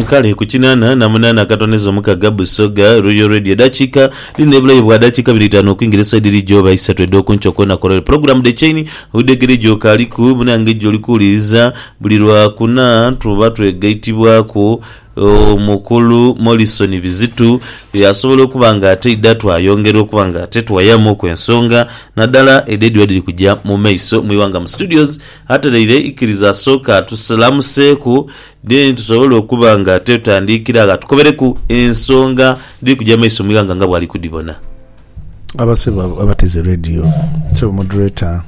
Kale ku kinana na munana akatondeza omukaga Busoga Royal Radio edakika dhino ebulayo bwa dakika biri itano okwingira esaidi eri gyoba isatu edhokunkyo kona korore program The Chain widegere gyokaliku munange gyoli kuwuliriza buli lwa kuna tuba twegaitibwaku omukulu Morrison Bizitu asobola okuba nga ate aidha twayongera okuba nga ate tuwayamu ku ensonga nadala edho edhiba dhiri kugya mu maiso mwiwanga mu studios Ateleire ikiriza asooke atusalamuseeku then tusobole okuba nga twetandiikira agha tukobereku ensonga dhiri kugya mu maiso mu ighanga nga bwali kudhibona. Abasebo abo abateze radio. Sebo moderator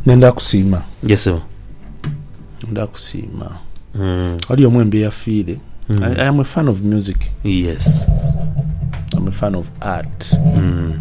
nenda kusiima. Yes sebo. Nenda kusiima. Mm. Ghali omu embi eyafiire. Mm. I, I am a fan of music. Yes. I'm a fan of art. Mm.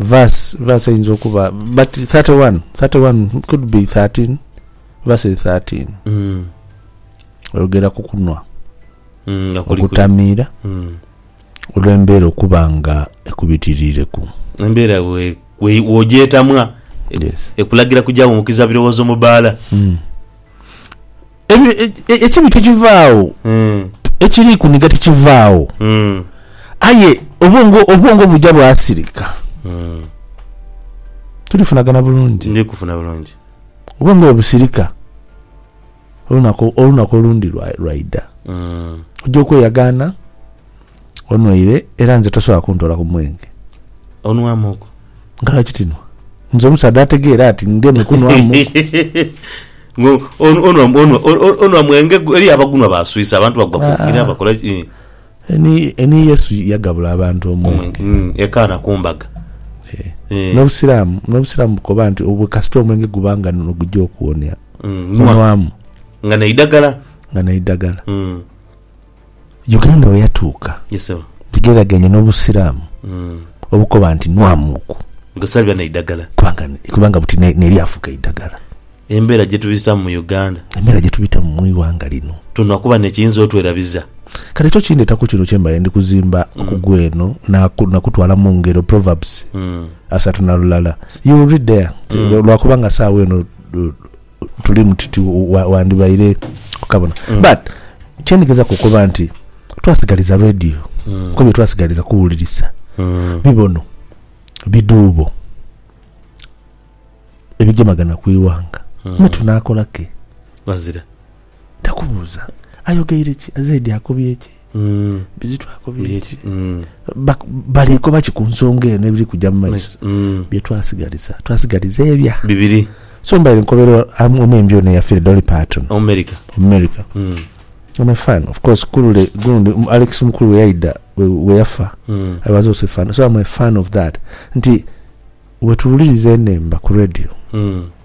verse verse eyinza okuba but 31 31 could be 13 verse 13 Mm. oyogera ku kunwa Mm, nga kuli kuli. okutamiira Mm. olw'embeera okuba nga ekubitiriireku embeera we- we- wogyetamwa yes. ekulagira kujawunkiza birowoozo mu bbaala Mm. Ebi- e- e- ekibi tikivaagho Mm. ekiri kuniga tikivaagho Mm. aye obwongo obwongo buja bwasirika Mm. tulifunagana bulungi ndi kufuna bulungi obwongo bwe busirika olunaku olunaku olundi lwa- lwaida Mm. ojja okweyagaana Onwaire era nze tosobola kuntoola ku mwenge. Onwamuku. Nga lwaki tinwa? Nze omusaadha ategeera ati ngeme kunwamuku. Onwa mwenge gwo? Eriyo abagunwa baaswisa, abantu bagwa ku ngira bakola ki? Ni Yesu yagabula abantu omwenge. Hmm, e Kaana ku mbaga. Eh. N'Obusiraamu, n'Obusiraamu bukoba nti obwo kasita omwenge guba nga nigugya okuwonia, onwamu. Nga n'eidagala. Nga n'eidagala. Hmm. Uganda we yatuuka Yes sebo. gigereraganye n'Obusiraamu obukoba nti nwamuuku Nga saliba na idagala. kubanga kubanga buti ne- n'eryafuuka eidagala. Embeera gye tubitamu mu Uganda. Embeera gye tubitamu mu ighanga lino. Twonha kuba n'ekiyinza otwerabiza. Kale ekyo kindeeta ku kino kye mbaire ndi kuzimba ku gweno naaku- nakutwala mu ngero, Proverbs asatu na lulala. You will read there. Lwakuba nga saagha eno tulimu tuti wandibaire okabona mm. but kyendigezaku okuba nti twasigaliza radio mm. ko byetwasigaliza kuwulirisa mm. bibono biduubo ebigemagana ku iwanga mm. netunakolaki bazira Takubuuza ayogeire ki, azaidi akobye ki, Bizito akobye ki. Bali koba ki ku nsonga eno ebiri kuja mu maiso? Bye twasigaliza, twasigaliza ebya. Bibiri. So mbaire nkobera omuyimbi ono eyafire, Dolly Parton. Omumerika. Omumerika. Am a fan. Of course ku lule gundi Alex Mukulu bwe yaidha, bwe yafa, I was also a fan. So am a fan of that. Nti wetuwuliriza enhemba ku radio,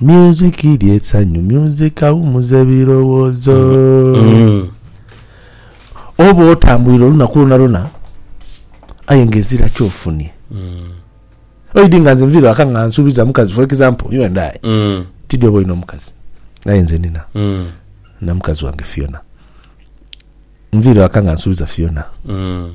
Music lye sanyu, music awumuza ebirowozo. Mm. Oba otambwire olunaku lwona lwona aye nga ezira kyofunye. Mm. Oidi nga nze nvire waka nga nsubiza mukazi for example you and I. Mm. Tidi oba olina omukazi aye nze nina. Mm. Na mukazi wange Fiona. Nvire waka nga nsubiza Fiona. Mm.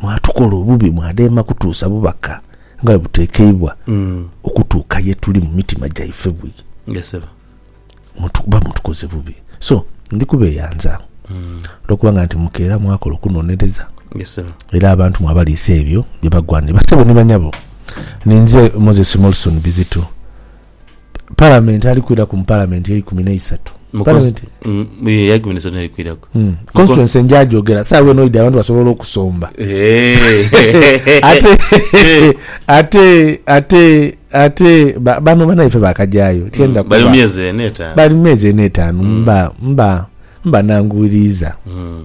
Mwatukola obubi mwadheema kutuusa bubaka nga bwe buteekeibwa okutuuka ye tuli mu mitima gyaife bwii. Kuba mutukoze bubi. So, ndi kubeeyanza olw'okubanga nti mukeera mwakola okunonereza era abantu mwabaliisa ebyo bye bagwanira. Bassebo ni bannyabo, ninze Moses Molson Bizito. Palamenti ali kwiraku mu Palamenti eikumi n'eisatu. Mu cons- Palamenti mm, ye, ya ikumi n'esatu n'erikwiraku. mm, constituency njagyogera saawa eno oidha abantu basobola okusomba Eh. ate ate ate ate ba- bano banaife bakagyayo tyenda Mm, bali mu kuba myezi ena etaano. bali mu myezi ena etaanu mba mba mba nanguwiriiza Mm.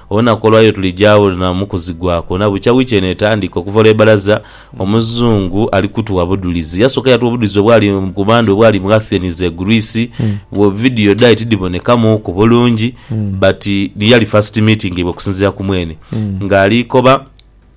Olunaku olwaleero tuli gyawo na mu kuzigwa kwona bukya wiiki eno etandika. Okuva olwe balaza, Omuzungu ali kutuwa budhulizi. Yasooka yatuwa obudhulizi obwali ku Mande obwali mu Athens e Greece. Wo video dhae tidhiboonekamuuku bulungi but yali first meeting yaibwe okusinziira ku mwene nga ali koba.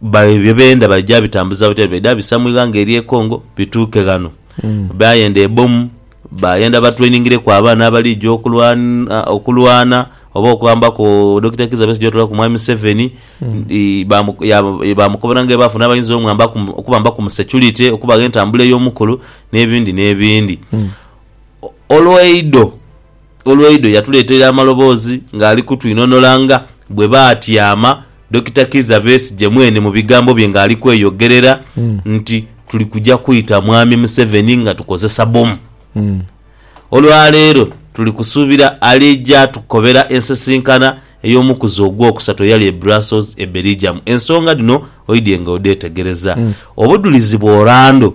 Bale bye benda baija bitambuza butya, baidha bisa mu ighanga erye Congo bituuke ghano. Bayenda ebomu, bayenda ba trainingireku abaana abalija okulwana okulwana oba okwambaku Dokita Kizza Besigye otuula ku mwami Museveni ye bamukobera nga bwebafuna abayinza omwambaku okubambaku mu security, okubagha entambula ey'omukolo n'ebindi n'ebindi. Olwaido Olwaido yatuleeteire amaloboozi ng'ali kutwinhonola nga bwe baatyama Dokita Kizza Besigye mwene mu bigambo bye ng'ali kweyogerera nti tuli kuja kwita Mwami Museveni nga tukozesa bbomu. Olwaleero tuli kusuubira alija tukobera ensisinkana ey'omukuzi ogwokusatu eyali e Brussels e Belgium. Ensonga dhino oidye nga odhetegereza. Obudhulizi bw'orando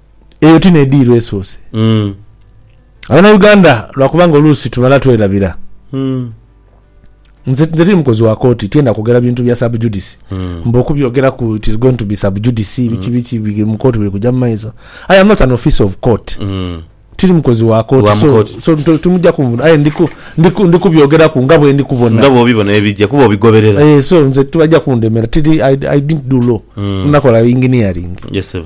eyo ti n'ediiro esoose. Abanauganda lwakuba nga oluusi tumala twerabira, nze nze tiri mukozi wa kooti tyenda kwogera bintu bya sub judice mbu okubyogeraku it is going to be sub judice biki biki biri mu kooti biri kuja mu maiso. I am not an officer of court, tiri mukozi wa kooti Wa mu so kooti. so to- timujja kunvuna aye ndi ku- ndi ku- ndi kubyogeraku nga bwendi kubona. Nga bw'obibona ebija kuba obigoberera. Eh, so nze tibajja kundemera tiri I, I didn't do law, nakola engineering. Yes, ssebo.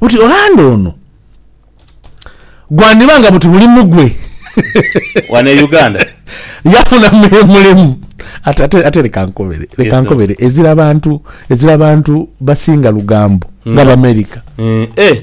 Buti Orlando ono gwandiba nga buti mulimu gwe wano e Uganda yafuna mulimu ate ate ate leka nkobere leka Yes, sir. nkobere ezira bantu ezira bantu basinga lugambo nga America Eh, eh.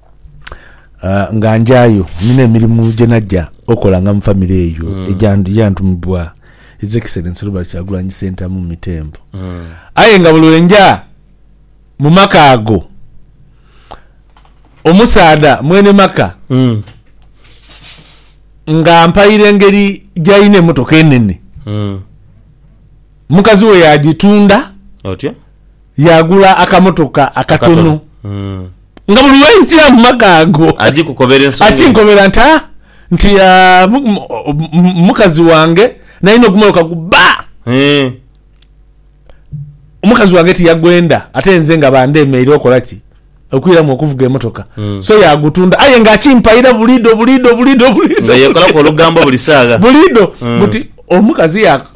Ah, nga njayo nina emirimu gye najja okola nga mu famire eyo mm. ejantumibwa His Excellency Robert Kyagulanyi Sentamu Mitembo mm. aye nga buli wenja mu maka ago omusaadha mwene maka mm. nga mpaire engeri gyalina emotoka enene mm. mukazi we yagitunda otyo yagula akamotoka akatono mm. Nga buli lwe nja mu maka ago akinkobera nti, Aa, nti, aa, mukazi wange nalina ogumoloka gu bba. Omukazi wange tiyagwenda ate nze nga ba ndemeire okola ki? Okwiramu okuvuga emotoka. So yagutunda aye nga akimpaira bulido, bulido, bulido, bulido. Nga yekolaku olugambo buli saagha. Bulido. Buti omukazi ya.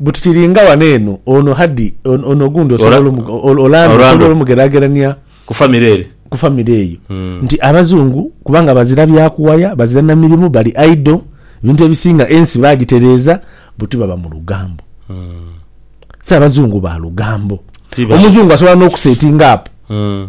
But tiringa wano eno ono Haddy ono ogundi osobola Orlando osobola omugeragerania ku family ere ku family eyo hmm. nti abazungu kubanga bazira byakuwaya bazira na mirimu bali idle ebintu ebisinga ensi bagitereza buti baba mu lugambo hmm. si abazungu ba lugambo omuzungu asobola n'okusetinga apo hmm.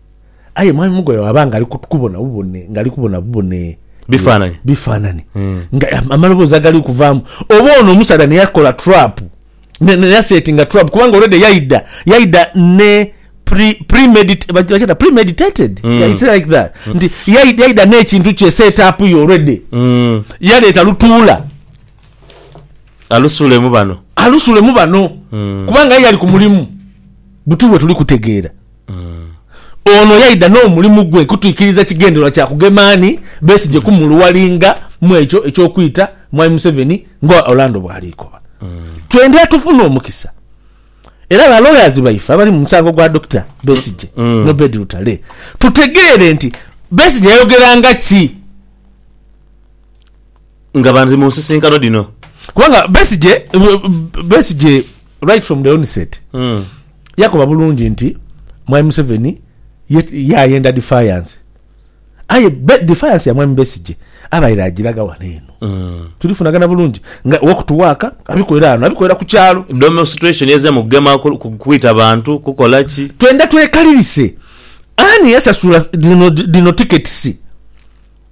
Aye mwami Mugoya bwaba nga ali kubona bubone, nga ali kubona bubone bifaananyi bifaananyi mm. nga amaloboozi agali kuvaamu, oba ono omusaadha neyakola trap neyasetinga trap, kubanga already yaida yaida ne premeditated mm. like that mm. nti yaida n'ekintu kye set up yo already mm. yaleeta lutuula alusuulemu bano alusuulemu bano mm. kubanga ye yali ku mulimu buti bwe tuli kutegeera Ono yaidha n'omulimu gwe kutwikiriza kigendererwa kya kugema Ani Besigye kumuluwalinga mw'ekyo eky'okwita Mwami Museveni nga Orlando bw'ali koba. Twendha tufune omukisa era ba lawyers baife abali mu musango gwa Dokita Besigye n'Obed Lutale tutegeere nti Besigye yayogeranga ki? nga banzi mu nsisinkano dhino. Kubanga Besigye Besigye right from the onset yakoba bulungi nti Mwami Museveni yayenda defiance aye defiance ya Mwami Besigye abaire agiraga wano eno tulifunagana bulungi nga walk to work abikolera wano abikolera ku kyalo. Demonstration eze mu kugema kwita bantu kukola ki? Twenda twekalirise ani yasasula dhino tickets?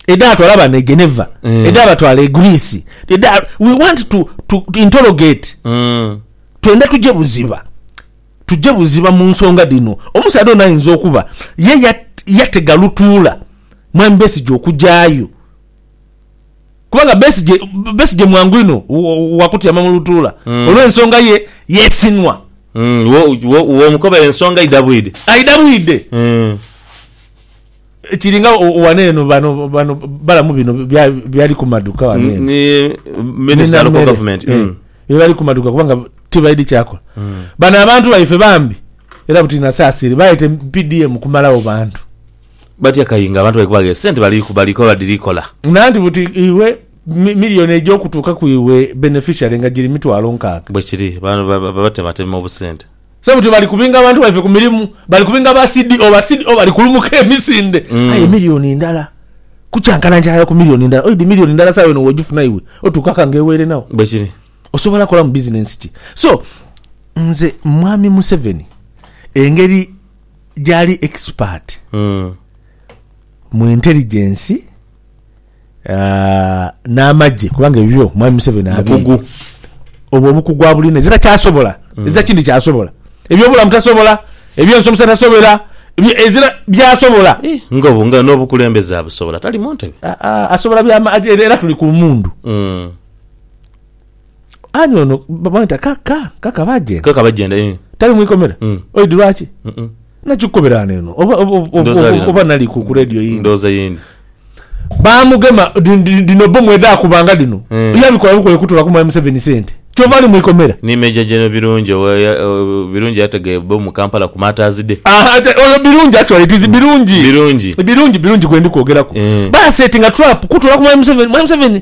edhatwala bano e Geneva, mm. edhabatwala e Greece, edha we want to, to, to interrogate mm. twenda tuje buziba tuje buziba mu nsonga dhino. Omusaadha ono ayinza okuba ye yatega lutuula mwami Besigye okugyayo kubanga Besigye Besigye mwangu ino wakutyama mu lutuula mm. olw'ensonga ye yesinwa mm. womukobera ensonga aidha bwide aidha bwide mm. Kiri nga ghano eno bano bano balamu bino byali ku maduka ghano eno. Ni minister local government. Eh, mm. Bye bali ku maduka kubanga tibaidi kyakola. Mm. Bano abantu baife bambi era buti nasasire baite PDM kumalawo bantu. Batya kayinga abantu bali kubage sente bali kubali kola diri kola. Nanti buti iwe milioni ejo okutuka ku iwe beneficiary nga giri mitwalo nkaaga. Bwekiri bano babatema tema obusente. Sebutyo bali kubinga abantu baife ku mirimu, bali kubinga ba CDO, ba CDO bali kulumuka emisinde. Aye milioni ndala kukyankana nkyala ku milioni ndala. Oidhi milioni ndala sawa eno wojifuna iwe otuuka ka ngeweirenagho. Bwekiri. Osobola kolamu bizinensi ki? So nze mwami Museveni engeri gyali expert mu intelligence, n'amagye kubanga ebibyo mwami Museveni abiine obwo obukugu abulina ezira kyasobola mm. ezira kindi kyasobola ebyobulamu tasobola ebyensomesa tasobera ezira byasobola eh, nga obu nga n'obukulembeze abusobola tali mu ntebe asobola byama era tuli ku mundu mm. Ani ono bamweta kaka kaka bajenda. Kaka bajenda ee. Tali mwikomera? Mm. Oid lwaki? Mm mm. Nakyo kukobera wano eno oba oba oba nali ku radio yindi. Ndoza yindi. Bamugema dino bomu edakubanga dino. Mm. Yabikola bukole kutola ku mwami Museveni sente. Kyova ali mwikomera. Ni Major General Birungi owa Birungi yatega bomu Kampala ku Martyrs Day. Aha ate oyo Birungi actually it is mm. Birungi. Birungi. Birungi Birungi gwendi kwogeraku. Mm. Basetinga trap kutola ku mwami Museveni. Mwami Museveni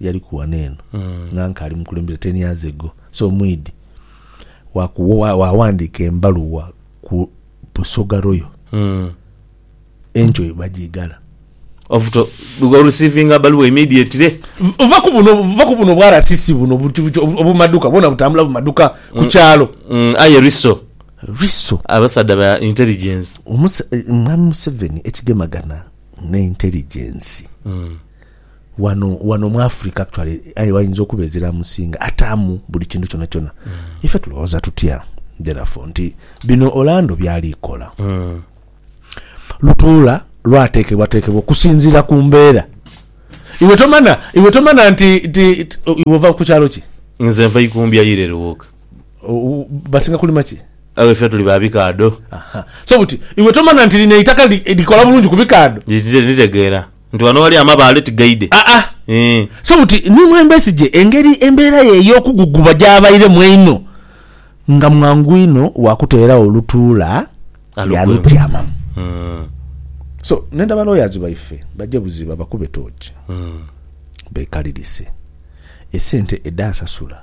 yaliku ghano eno nga nkaali mukulembeze ten years ago so mwidhi waghandiika embaluwa ku Busoga Royal enkyo ye bagiigala. Ovuto olusiivinga baluwa immediately. Va ku buno va ku buno bwa RCC buno obumaduka bwona butambula bumaduka ku kyalo. Aye Riso. Riso. Abasaadha ba intelligence. Mwami Museveni ekigemagana ne intelligence. wano wano mu Africa actually aye wayinza okuba ezira musinga atamu buli kintu kyona kyona mm. ife tulowoza tutya therefore nti bino Orlando byali kola mm. lutuula lwatekebwa tekebwa okusinzira ku mbeera iwe tomana iwe tomana nti nti iwe ova ku kyalo ki nze nva ikumbya yire ruwoka basinga kulima ki awe fe tuli babikado so buti iwe tomana nti lino itaka likola bulungi kubikado nitegeera Nti wano wali amabaale tigaidhe aa eeh. So buti ni mwe Besigye engeri embeera ye ey'okuguguba gy'abairemu einho nga mwangu inho wa kuteeragho lutuula ya lutyamamu. So ndhenda ba lawyers baife baje buziba bakube tooki beekalirise esente edhaasasula.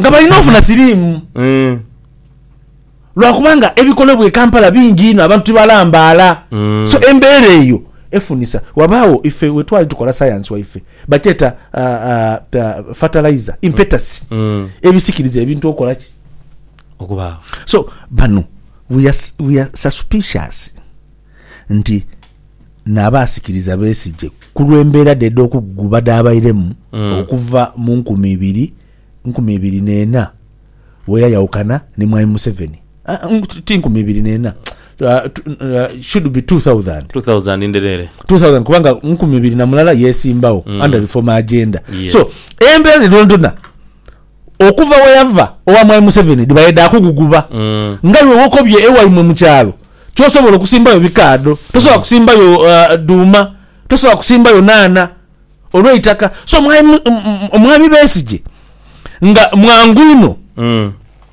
nga balina ofuna siriimu mm. lwakubanga ebikolebwa e Kampala bingi inho abantu tibalambaala mm. so embeera eyo efunisa wabaawo ife wetwali tukola sayansi waife bakyeta uh, uh, fertilizer impetasi mm. mm. ebisikiriza ebintu okola ki okubaawo so bano we are, we are suspicious nti n'abaasikiriza beesigye ku lw'embeera dhe edh'okugugu badhaabairemu okuva mu nkumi ibiri nkumi ibiri n'ena bwe yayawukana ni Mwami Museveni. Ah, mm, ti nkumi ibiri n'ena, ah, tu- ah, should be 2000. 2000 ndhereere. 2000 kubanga nkumi ibiri na mulala yesimbawo under reform agenda Yes. so embeera dhonaidhona okuva weyava owa mwai Museveni dhibaire dha kuguguba nga iwe wokobye ewaimwe mu kyalo kyosobola okusimbayo bikaadho tosobola kusimbayo dhuuma tosobola kusimbayo naana olweitaka so mwami Besigye nga mwangu inho.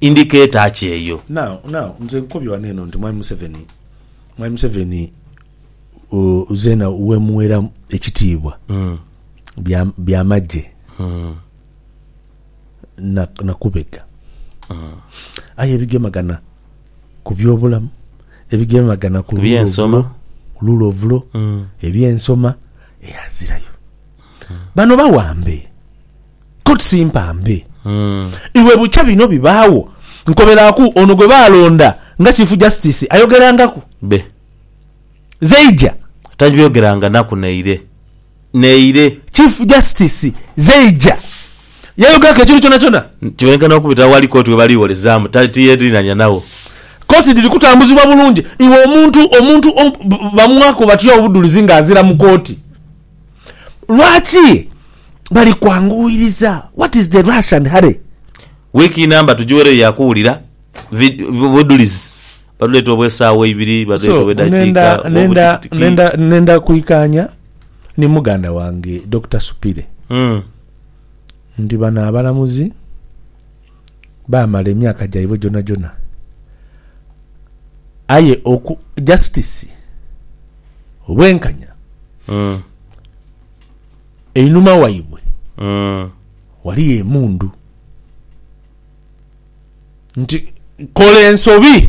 indicator ki eyo? Now, now, nze nkukobye wano eno nti Mwami Museveni, Mwami Museveni ooh, zeena wemuwera ekitiibwa, bya, byamagye na, na kubega. Aye ebigemagana ku byobulamu, ebigemagana ku lule ovulo, ku lule ovulo, ebyensoma, eeh, azirayo. Bano bawambe. Koti si mpambe. Iwe bukya bino bibaagho, nkoberaku ono gwe baalonda nga Chief Justice ayogerangaku. Be. Zeija. Tagyogeranga naku naire. Naire. Chief Justice Zeija yayogeraku ekintu kyonakyona? Kibonekanha okubita aghali koti we bali gholezaamu tiyeerinhania nagho. Koti dhiri kutambuzibwa bulungi. Iwe omuntu, omuntu, omu, bamwaku batya obudhulizi nga azira mu koti? Lwaki bali kwanguwiriza? What is the rush and hurry? Week inamba tujiwereyo ya kuwulira budhulizi. Badhuleeta obwe saawa eibiri, badhuleeta obwe dakiika, obwo butikitiki. Nenda kwikaanya ni muganda wange Dokita Supire nti bano abalamuzi. baamala emyaka gyaibwe gyonagyona aye oku justice obwenkanya Mm. einhuma waibwe Mm. waliyo emundu nti kola ensobi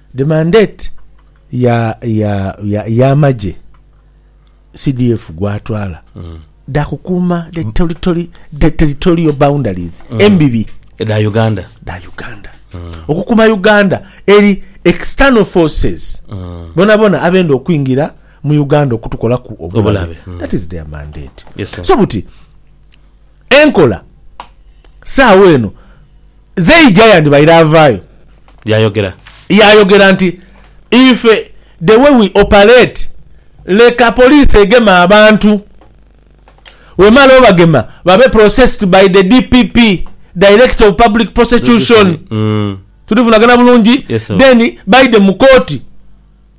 The mandate ya ya ya yamagye CDF gwatwala dha kukuuma the territory the territorial boundaries embibi Edha Uganda. dha Uganda okukuuma Uganda eri external forces bonabona abenda okwingira mu Uganda okutukolaku obulabe Obulabe, mm. that is their mandate Yes, sir. so buti Enkola saagho eno zeija yandibaire avaayo. Yayogera. Yayogera nti, Ife the way we operate, leka police egeme abantu, wemala obagema babe processed by the DPP, Director of Public Prosecution, tuli vunagana bulungi, then baidhe mu kooti.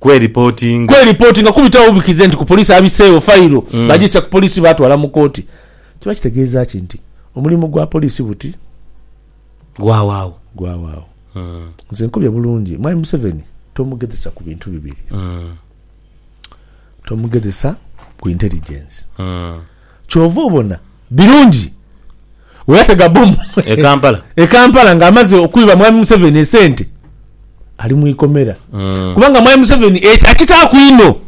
kweripotinga. Kweripotinga kubitawo bubikirize nti ku poliisi abiseewo fayiro baagissa ku poliisi baatwala mu kkooti. Kiba kitegeeza ki nti omulimu gwa poliisi buti? Gwaawo agho. Gwaawo agho. Nze nkobye bulungi Mwami Museveni tomugezesa ku bintu bibiri. Tomugezesa ku intelligence. Kyova obona Birungi weyatega bomu e Kampala nga amaze okwiba Mwami Museveni esente ali mwikomera kubanga Mwami Museveni ekyo akitaaku inho.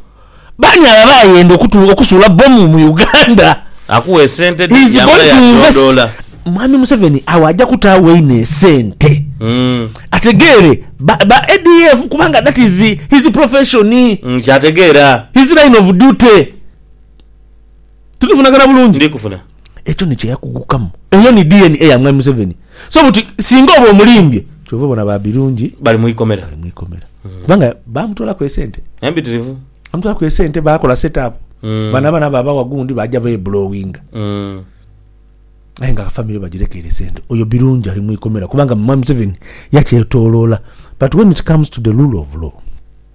Baani abo abayenda okusuula bomu mu Uganda? He's going to invest. Mwami Museveni awo aja kutaawo inho esente ategeere ba ADF kubanga that is his profession, his line of duty. Tulivunagana bulungi. Ndi kuvuna. Ekyo ni kye yakugukamu. Eyo ni DNA ya Mwami Museveni. So buti singa oba omulimbye. Kyova obona ba Birungi. Bali mu ikomera. Bali mu ikomera. Kubanga bamutwalaku esente. Empitirivu. Bamutwalaku esente, bakola set up. Bano abaana babawa gundi baja beblowinga. Aye nga family bajirekeire sente. Oyo Birungi ali mu ikomera kubanga Mwami Museveni yakyetoloola. But when it comes to the rule of law.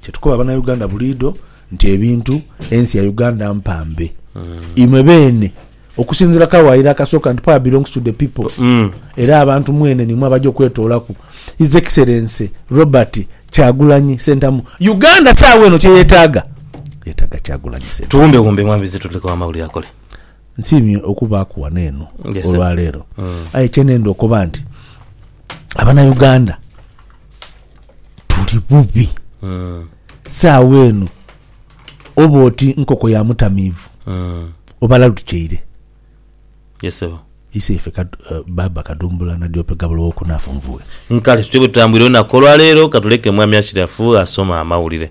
Kyetukoba banauganda buliidho nti ebintu ensi ya uganda mpambe imwe beene okusinzira kawaire akasooka nti power belongs to the people era abantu mwene nimwe abaja okwetoolaku his excellency Robert kyagulanyi sentamu uganda saawa eno kyeyetaaga yetaaga kyagulanyi sentamu. Tuwumbe wumbe mwami Bizituleko amawulire akole. Nsiimye okubaaku wano eno olwaleero aye kyenenda okoba nti abanauganda. tuli bubi. Saagho eno oba oti nkoko ya mutamiivu, obalalu tukyeire. Ye sebo. Iseife ka, eh, Baaba Kadumbula na Diope Gabula ow'okunaafu nvughe. Nkale tutyo bwe tutambwire olunaku olwa leero, katuleke Mwami Ashirafu asome amawulire.